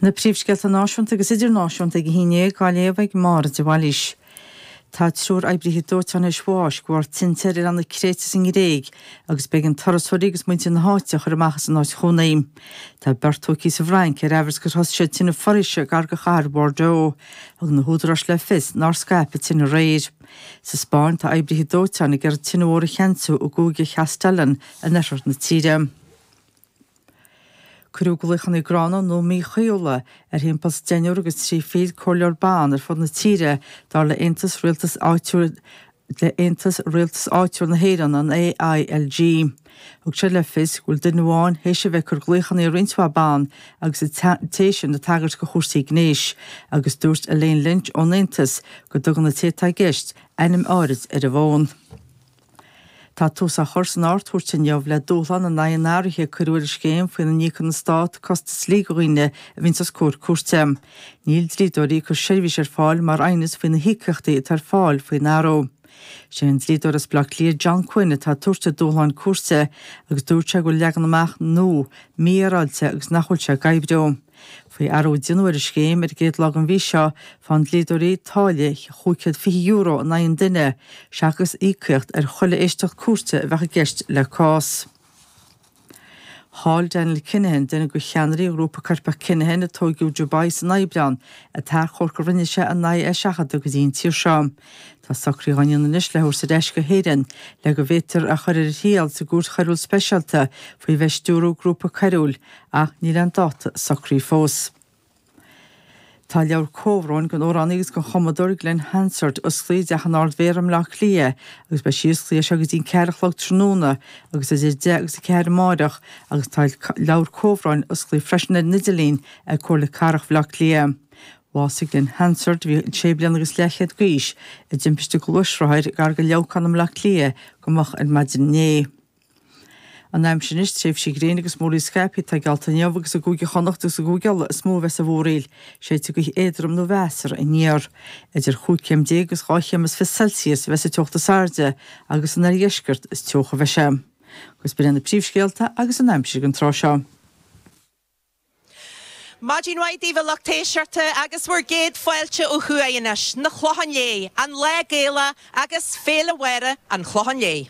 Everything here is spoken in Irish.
Na príomhscéalta náisiúnta agus idirnáisiúnta ag a haon dhéag á léamh ag Máire de Bhailís. Tá triúr oibrithe dóiteáin théis bháis de bharr tinte ar oileán na Créite sa nGréig agus b'éigean turasóirí agus muintir na háite a chur amach as a n-áit chónaí. Tá beirt tóigthí sa bhFrainc ar aimhreas gur thosaigh siad tine foraoise gar go chathair Bordeaux. Thug na húdaráis le fios nár scaip an tine aréir. Sa Spáinn, tá oibrithe dóiteáin ag iarraidh tine mhór a cheansú i gcúige Chastellón in oirthear na tíre. Cuireadh glaochanna gránna nó míchaoithiúla ar thimpeall deichniúr agus trí fichid comhairleoir ban ar fud na tíre, dar le aontas rialtas áitiúil le Aontas Rialtas Áitiúil na hÉireann, an AILG. Thugadar le fios go bhfuil duine amháin théis a bheith ag cur glaochanna ar roinnt mhaith ban agus an té sin ag tagairt go chúrsaí gnéis agus dúirt Elaine Lynch ón aontas go dtugann an té atá i gceist ainm áirid ar an bhfón. Tá tús á chur san Ardchúirt inniu le dúshlán in aghaidh an athraithe a cuireadh ar an scéim faoina n-íocann an Stát costais dlí do dhaoine a bhíonns os comhair cúirte. Níl dlíodóirí ag cur seirbhís ar fáil mar aighneas faoi na híocaíochtaí atá ar fáil faoin athrú. Sé an dlíodóir as Baile Átha Cliath John Quinn atá ag tabhairt an dúshláin cúirte agus dúirt sé go bhfuil leagan amach nua mífhéaráilte agus nach bhfuil sé ag oibriú. Faoi athrú a déanadh ar an scéim ar an gcéad lá den mhí seo, faigheann dlíodóirí táille €520 in aghaidh an duine, seachas íocaíocht ar chuile éisteacht cúirte a bheadh i gceist le cás. Chaill Daniel Kinahan, duine de cheannairí an ghrúpa coirpeach Kinahan a tóigeadh i Dubai san Aibreán, an t-achomharc a rinne sé in aghaidh é a seachadadh go dtí an tír seo. Tá socruithe á ndéanamh anois le é a thabhairt ar ais go hÉirinn le go bhféadfar é a chur ar a thriail sa gCúirt Choiriúil Speisialta faoi bheith ag stiúradh grúpa coiriúil ach níl aon dáta socraithe fós. Tá leabhar comhbhróin don amhránaí agus don chumadóir Glen Hansard osclaithe i dTeach an Ard-Mhéara i mBleá Cliath agus beidh sí osclaithe as seo go dtí an ceathair a chlog tráthnóna agus idir a deich agus a ceathair amáireach agus tá leabhar comhbhróin osclaithe freisin ar an idirlíon ag Comhairle Cathrach Bhleá Cliath. Bhásaigh Glen Hansard, a bhí sé bliana agus leathchéad d'aois, i dtimpiste gluaisrothair gar go Leamhcán i mBleá Cliath go moch ar maidin inné. An aimsir anois, tréimhsí gréine agus múrtha scaipthe atá geallta inniu agus i gCúige Chonnacht agus i gCúige Uladh is mó a bheas an mhúraíl. Séidfidh gaoth éadrom nó mheasartha aniar. Idir chúig chéim déag agus dhá chéim is fiche Celsius a bheas sa teocht is airde agus san oirdheisceart is teocha a bheidh sé. Agus b'in é na príomhscéalta agus an aimsir don tráth seo. Maidin mhaith daoibh a lucht éisteachta agus bhur gcéad fáilte ó thuaidh anois, chun an Chlocháin Léith, an Lá Gaelach agus Féile Mháire an Chlocháin Léith.